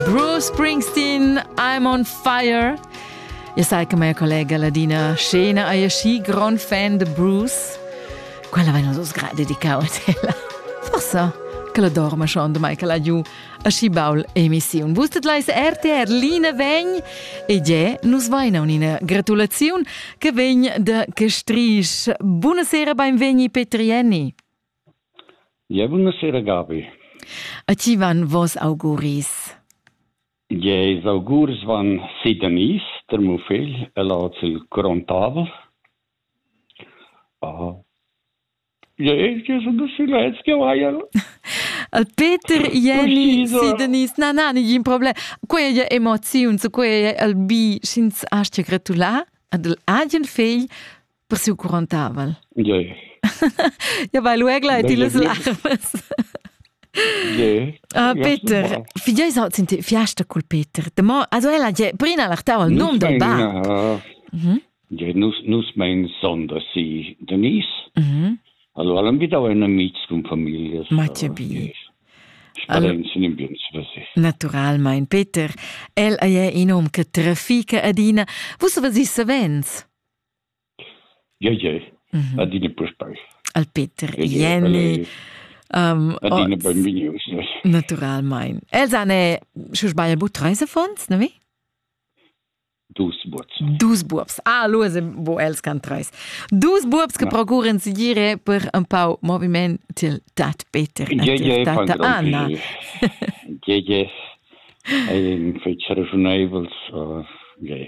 Bruce Springsteen, I'm on fire. Ihr seid che mia collega Ladina Scena è schi gran fan de Bruce. Quella vai non so sgra dedicau a tela. Forse che la dorma schon de Michael Aggiu a schi baul emissiun. Wusstet leis RTR Line vegn e je nus vaina un'ina gratulaziun che vegn de Cestrisch. Buonasera, beinvegni Petrienni. Jeu buonasera Gabi. E ti van vos auguris. Jeis augurs van si Denise, der meu figl, e lads il Grontavel. Ah. Jeis, jeu sun dus silets che vaiel. Peter Jenny si Denise, na na, nigin problem. Quei è emoziun, so quei è il bi, sch'ins astga gratulare ad agen figl Per siu quarantavel. Gie. ja, vai luegla e ti las larmas. Gie. Ah, Peter, figei sa sind fiasta cul Peter. De mo, also ella je prina l'artau al num del bar. Gie, nus nus mein sonder si Denise. Mhm. Also allem wieder ein Amics con familias. Ma che bi. Naturalmein, Peter, el ei un hom che trafica adina. Vus vus savens? Ie ie, adina puspei. Al Peter, Jenny, adina benvegnius. Naturalmein. Els han sche sbaglio bu treis affons, ne vi? Dus buobs. Dus buobs. Ah, lu bo els can treis. Dus buobs che procuren sigire per un pau moviment til tat Peter e til tata Anna. Ie ie, ein fetg ragiunevels, ie.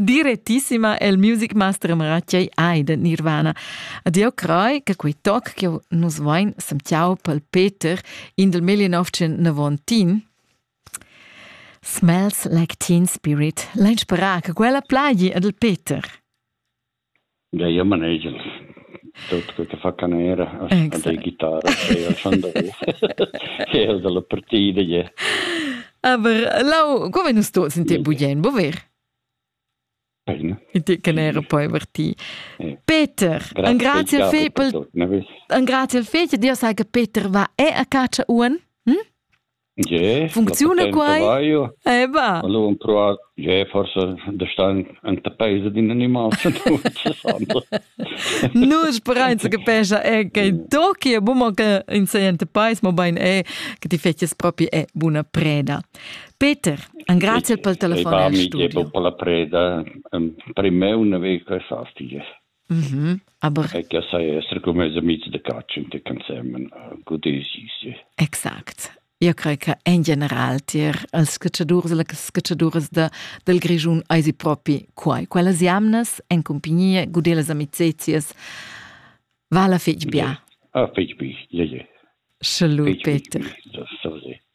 direttissima el music master Mratjei Eide Nirvana. Adio crai che quei toc che nus vain semtiau pel Peter in del 1919 Smells Like Teen Spirit, l'inspirà che quella plagi ad el Peter. Gia manegia tut quei che fa canera, ascender guitarra, eir il schandarot, eir dalla partida gie. Aber lau, co vegn nus tuots in te bugien, bo ver? Bene. In te che n'era poi per ti. Peter, un grazie al fe per un grazie al fe, Dio sai che Peter va e a caccia un. Hm? Ge, funcziuna quai? Eba. Allora provar, ge, forse da star enta paese d'in animal. Nus sperain che pensa è che Toki è buon che in sente pais, ma bain è che ti fetches proprio è buona preda. Peter, un grazie per il telefono e studio. per la preda. Per me una vecchia sastige. Mhm. Aber e che sai essere come mes amici de caccia in te cansemen godesi si. Exact. Io crei che in general tier als scacciadurs e las scacciaduras de, del Grischun eisi propi quai. Quellas jamnas en compagnia, gudelas amicizias, va la fetg bia. Ah, fetg bi, ie, ie. Salut, Peter. Sorry.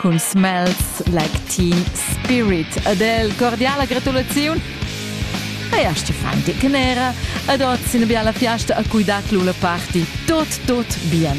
cun Smells Like Teen Spirit. Ad el cordiala gratulaziun e a Stefan Deckenera ad oz ina biala fiasta a cui dat l'una party tot tot bien.